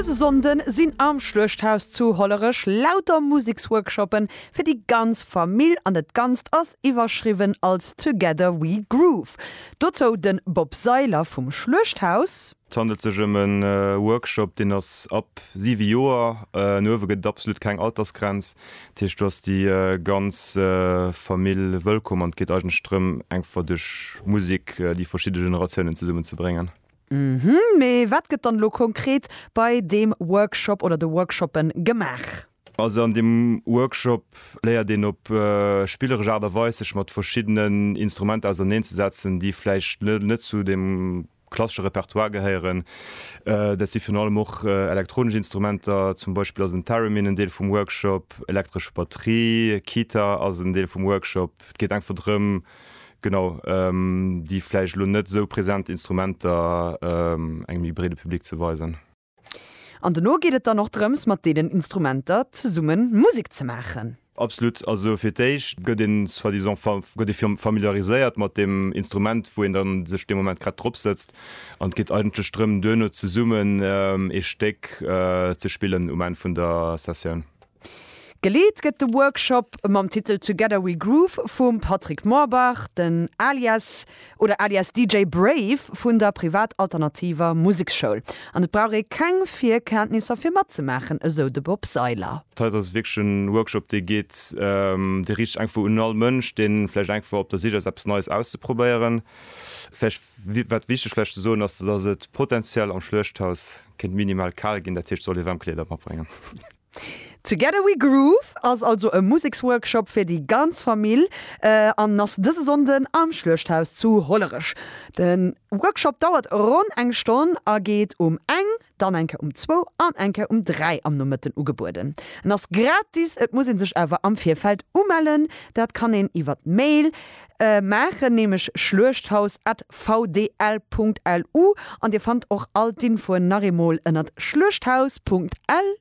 Dëse Sonnde sinn am Schluechthaus zu Hollerech lauter Museksworkshoppe fir déi ganz Famill an et Ganzt ass iwwerschriwwen als Together we groove. Dozou de Bob Seiler vum Schluechthaus. Et handelt sech ëm e Workshop, deen ass ab 7 Joer an uewe, gëtt et absolut keng Altersgrenz. Dat heescht, do ass déi ganz Famill wëllkomm an et geet eigentlech drëm, eng Fra duerch Musek déi verschidde Generatiounen zesummenzebréngen. Uhmm, mee wat gëtt dann elo konkret bei deem Workshop oder de Workshoppen gemaach? Also an deem Workshop léiert een op spilleresch Aart a Weis sech mat verschiddenen Instrumenter auserneen ze setzen, déi vläicht net zu deem klassesche Repertoire gehéieren. Dat si virun allem och elektronesch Instrumenter, zum Beispill ass en Theremin en Deel vum Workshop, elektresch Batterie, Kiter ass en Deel vum Workshop. Et geet einfach drëm. Genau, déi vläicht elo net esou present Instrumenter engem méi breede Public ze weisen. An dono geet et dann och drëms, mat deenen Instrumenter zesumme Musek ze maachen. Absolut, also fir d'éischt gëtt ee soi-disant gëtt ee familiariséiert mat deem Instrument, wou een da sech dee Moment grad drop sëtzt. An et geet eigentlech drëm, duerno zesummen ee Stéck ze spillen um Enn vun der Sessioun. Geleet gëtt de Workshop mam Titel Together We Groove vum Patrick Morbach, den Alias oder alias DJ Brave vun der Privat Alternativer Museksschoul. An et brauch ee keng Virkenntnisser fir matzemaachen, esou de Bob Seiler. D'Heit ass wierklech en Workshop dee geet, dee riicht sech eng Fro un all Mënsch, deen vläicht eng Fro op der Sich ass eppes Neies auszeprobéieren. Vläicht wat wichteg vläicht ze soen ass, dass et potenziell am Schluechthaus kéint minimal kal ginn, dat heescht soll ee waarm Kleeder matbréngen. Together We Groove ass also e Museksworkshop fir déi ganz Famill an ass dëse Sonnden am Schluechthaus zu Hollerech. De Workshop dauert ronn eng Stonn a geet um eng, dann eng Kéier um zwou an eng Kéier um dräi am Nomëtten ugebueden. En ass gratis, et muss ee sech awer am Virfeld umellen. Dat kann een iwwert Mail maachen, nämlech schluechthaus at vdl Punkt lu an Dir fannt och all d'Infoen nach eemol ënnert schluechthaus Punkt lu.